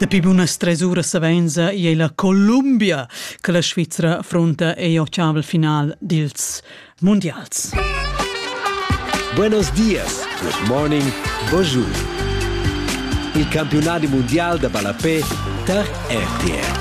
Dapi bunas tres uras savenza ei la Columbia che la Svizra affronta ei ocavel final dils mundials. Buenos dias, good morning, bonjour. Il campionati mondial da ballapé tar RTR.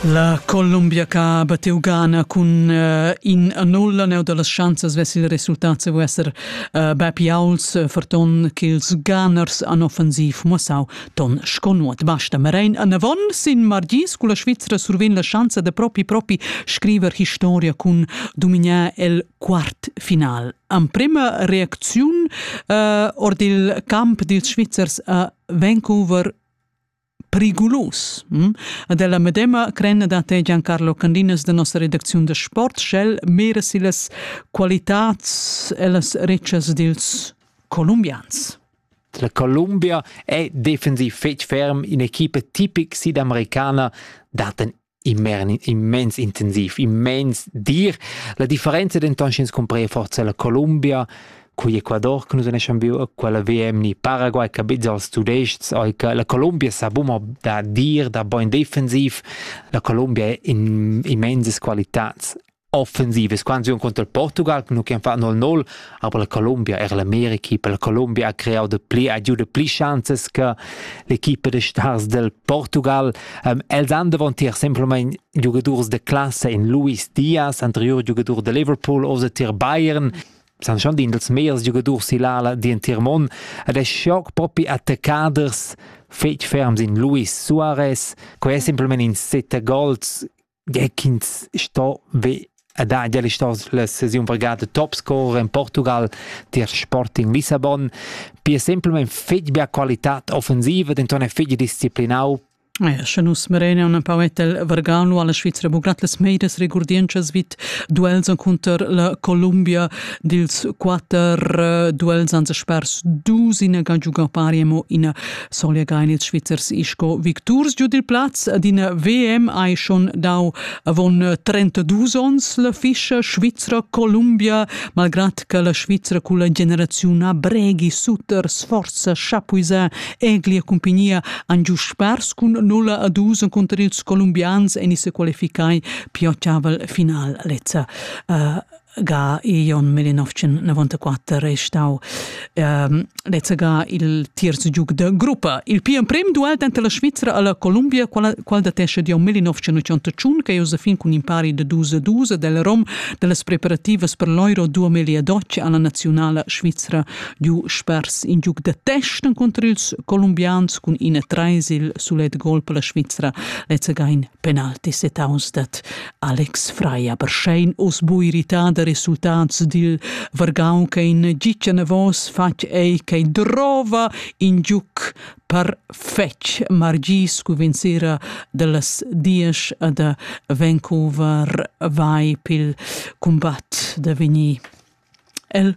La Columbia ca bateu Ghana cun uh, in a nulla neu dallas schanzas vess il resultat se vo esser Bapiauls ferton ch'ils ganers an offensiv mussau ton sco nuot basta. Marein anavon sin margis culla Svizra survegn la schanza da propi propi scriver historia cun dominar el quartfinal. Emprema reacziun eh, ord il camp dils Svizzers a Vancouver periclus. Hm? Dalla medema crenna da te Giancarlo Candinas de nossa redacziun da sport, sch'el mira si las qualitats e las ricas dils colombians. La Columbia è defensiv fetg ferm, in equipa tipic sidamericana dat en immens intensiv, immens dir. La differenza denton sch'ins cumprea forza la Columbia cui Ecuador che nus neschan viu quella VM ni Paraguay che bizza als tudestgs la Columbia sa buma da dir da boin defensiv la Columbia in immenses qualitats offensive squansiun contro il Portugal nu can fa 0-0 aber la Colombia er l'America per la Colombia ha creau de pli agiude pli chances che l'equipe de stars del Portugal um, els han davanti er semplament giocadors de classe in Luis Diaz anterior giocador de Liverpool o de Tier Bayern san schon din dels meiers giocadors si l'ala di in Tier Mon ed è schoc propi attaccaders fetg ferms in Luis Suarez quei è semplament in sette goals Gie ch'ins sto ve ed ha gia stau la sesiun vargada top scorer en Portugal tier Sporting Lissabon. Pia semplamein fetg bia qualitad offensiva, denton è fetg disciplinau Sche nus merein un pau etel Vergano alla Svizra buglat las meidas regurdientschas vid duels cunter la Columbia dils quater eh, duels ans spers dus ina ga giugar pari mo ina Solegain ils Svizzers sco victurs giu dil plaz d'ina VM hai schon dau avon 32 onns la fischa svizra Columbia, malgrad che la Svizra culla generaziun a Breghi suter sforza chapuisa eglia compagnia han giu spers cun 0 a 2 conter ils colombians en se qualificai più final lezza uh, ga Ion Melinovcin 94 è stau ehm, lezza ga il terzo giug de gruppa. Il più prem duel denter la Svizra e la Columbia, qual, qual datesce di Ion Melinovcin 81, che è fin cun impari de 2-2 del Rom delle preparative per l'Euro 2012 alla nazionale svizra giu spers in giug de testen contro ils colombians cun in e treis il sulet gol per la Svizra lezza ga in penalti setaus dat Alex Frei aber schein oz bu irritar da resultats dil vargau che in gitgia navos fatg ei che drova in giuc perfetg Margis Cuvenzera dallas diesch da Vancouver vai pil cumbat da vegnir. El